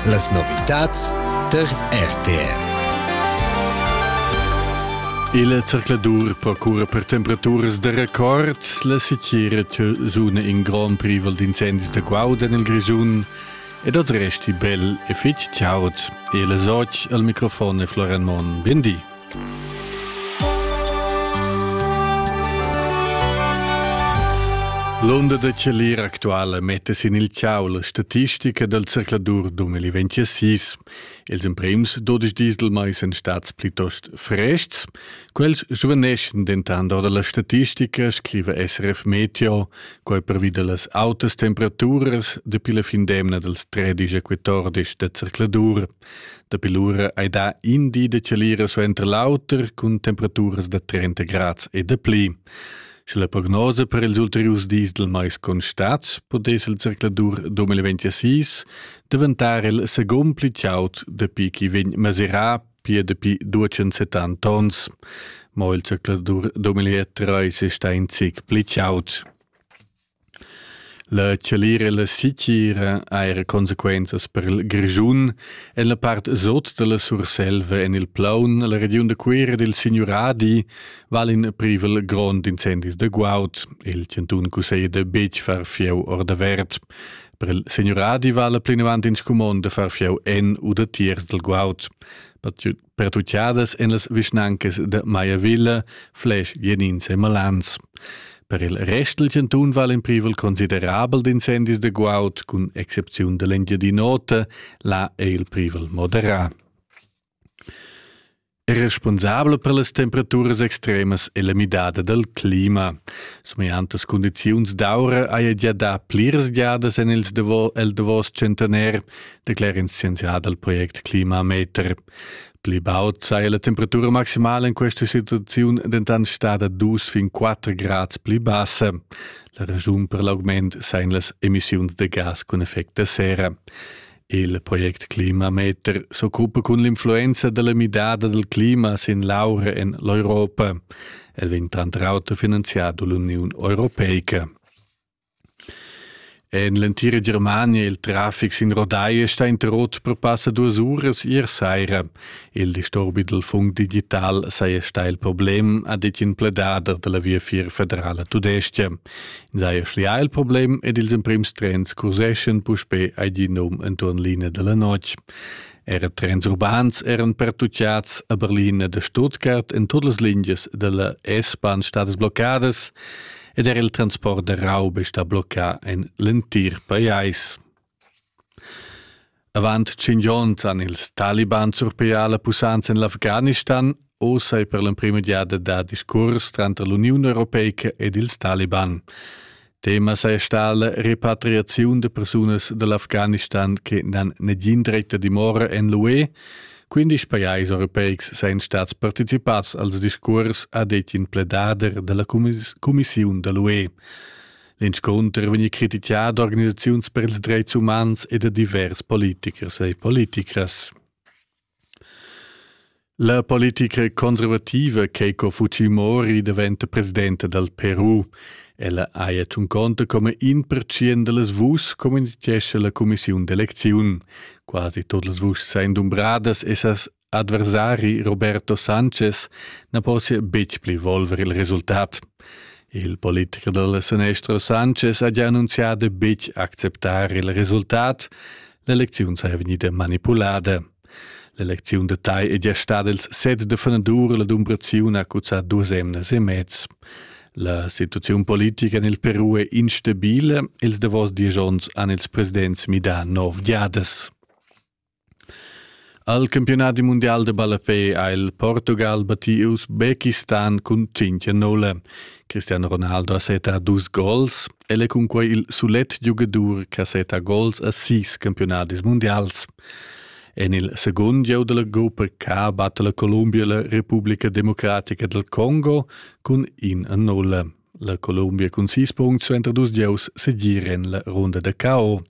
Las novitads tar RTR. Il zercladur procura per temperaturas da record. La sitgira zuna in grond privel d'incendis da guaud en il Grisun ed ad resti bel e fitg chaud. E la soc al microfon è Florian Mon. Bindi. L'onda da chalir actuala metta sin il ciau la statistica dal circladur 2026. Els emprims 12 dis del mais èn stats plitost frests. Quels svaneschan dentant ora la statistica, scriva SRF Meteo, quai pervi da las autas temperaturas dapi la fin d'emna dals 13 e 14 da circladur. Dapi lura ei dà in di da chalira suenter l'auter cun temperaturas da 30 grads e dapli. Sche la prognosa per ils ulteriurs dis dal mais constat, podess il zercladur 2026 daventar il secund pli chaud dapi ch'i vegn mesurà pia dapi 270 tons. Mo il zercladur 2023 è stà in zic pli chaud. La chalira e la sitgira ha era consequenzas per il Grischun en la part sot da la Surselva en il Plaun, la regiun da Cuira dil Signuradi val in privel grond incendis da guaud. Il chantun cusseglia da betg far fieu ordavert. Per il Signuradi vala plinavant in scumond da far fieu en u da tiers dal guaud. pertuchadas en las vischnancas de Maiavilla, Flesch, Jenins e Malans. Per il rest il chantun val in privel considerabel d'incendis de guaud, cun excepziun dell'Engiadin'Ota, là è il privel moderat. è responsabel per las temperaturas extremas e la midada del clima. Somiantas condiziuns d'aura haja gia da pliras giadas en il davos, el davos centenaire declera in scienzià dal project Klimameter. Pli baud saja la temperatura maximala in questa situaziun dentant stada dus fin quatter grads pli bassa. La raschun per l'augment sajan las emissiuns da gas cun effect da serra. Il project Klimameter s'occupa cun l'influenza della midada del clima sin l'aura en l'Europa. El vegn tranter auter finanziato dall'Union Europeica. En l'entira Germania il traffic sin rodai è stà interrot per passa duas uras ier saira. Il disturbi dal fund digital saja stà il problem, ha ditg in pledader da la Viafier federala tudestga. Ins haja schlià il problem ed ils emprims trens curseschan puspè ai di num enturn linea da la notg. Era trens urbans eran pertutgads a Berlin ed a Stuttgart en tut las lingias da la S-Bahn stadas bloccadas. ed er il transport da raub è stà bloccà en l'entir pajais. Avant tschient onns han ils Taliban surpià la pussanza en l'Afghanistan. Oz è per l'emprima giada da discurs tranter l'Uniun Europeica ed ils Taliban. Tema sei sta la repatriaziun de persunas dell'Afghanistan che nan negin dretta dimora en l'UE, Quindisch pajais europeics sajan stats participads als discurs, ha detg in pledader da la cumissiun da l'UE. L'inscunter vegni critichà da organisaziuns per ils dretgs umans e da divers politichers e politichers. La politica conservativa Keiko Fujimori daventa presidenta dal Peru. Ella haja tschunconta come in percient da las vuschs, communitgescha la cumissiun d'elecziun. quasi tot las vuschs ein dumbradas e ses adversari Roberto Sanchez na possia betg pli volver il resultat. Il politicher dal Senestro Sanchez ha già annunziato betg acceptar il resultat. L'elecziun saja vegnida manipulada. L'elecziun da Tai è già stada ils set de fenadur la dumbraziun ha cuzzà duas emnas e mez. La situaziun politica en il Peru è instabile. Ils davos diesch onns han ils presidents midà nov giadas. Al campionat mundial de ballapé ha il Portugal battì Usbekistan cun 5-0. Cristiano Ronaldo ha seta dus gols. El è cunquai il sulet giugadur che seta gols a sis campionadis mundials. En il segund gieu dalla gruppa K batta la Columbia la Republica Democratica del Congo cun in a nulla. La Columbia cun sis punts suenter dus gieus segir en la runda da KO.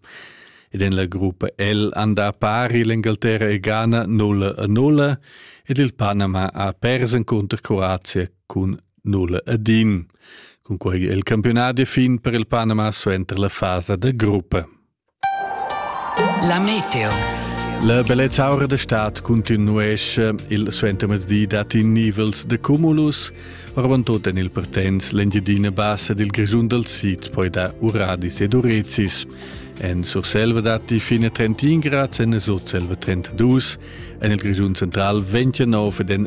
Ed en la gruppa L anda pari l'Engalterra e Ghana 0 a 0 ed il Panama ha pers encunter Croazia cun 0 a din. Cun quei è il campionat fin per il Panama suenter la fasa da gruppa. La meteo. La bellezza aura da stad continuesce. Il suentermezdi dat in nivels de cumulus. Oravantut en il Pertens l'Engiadina bassa del Grischun dal Sid poi da Uradis ed Urezis. En Surselva datti fine 31 grad, en Sutselva 32, en il Grischun central 29 ed en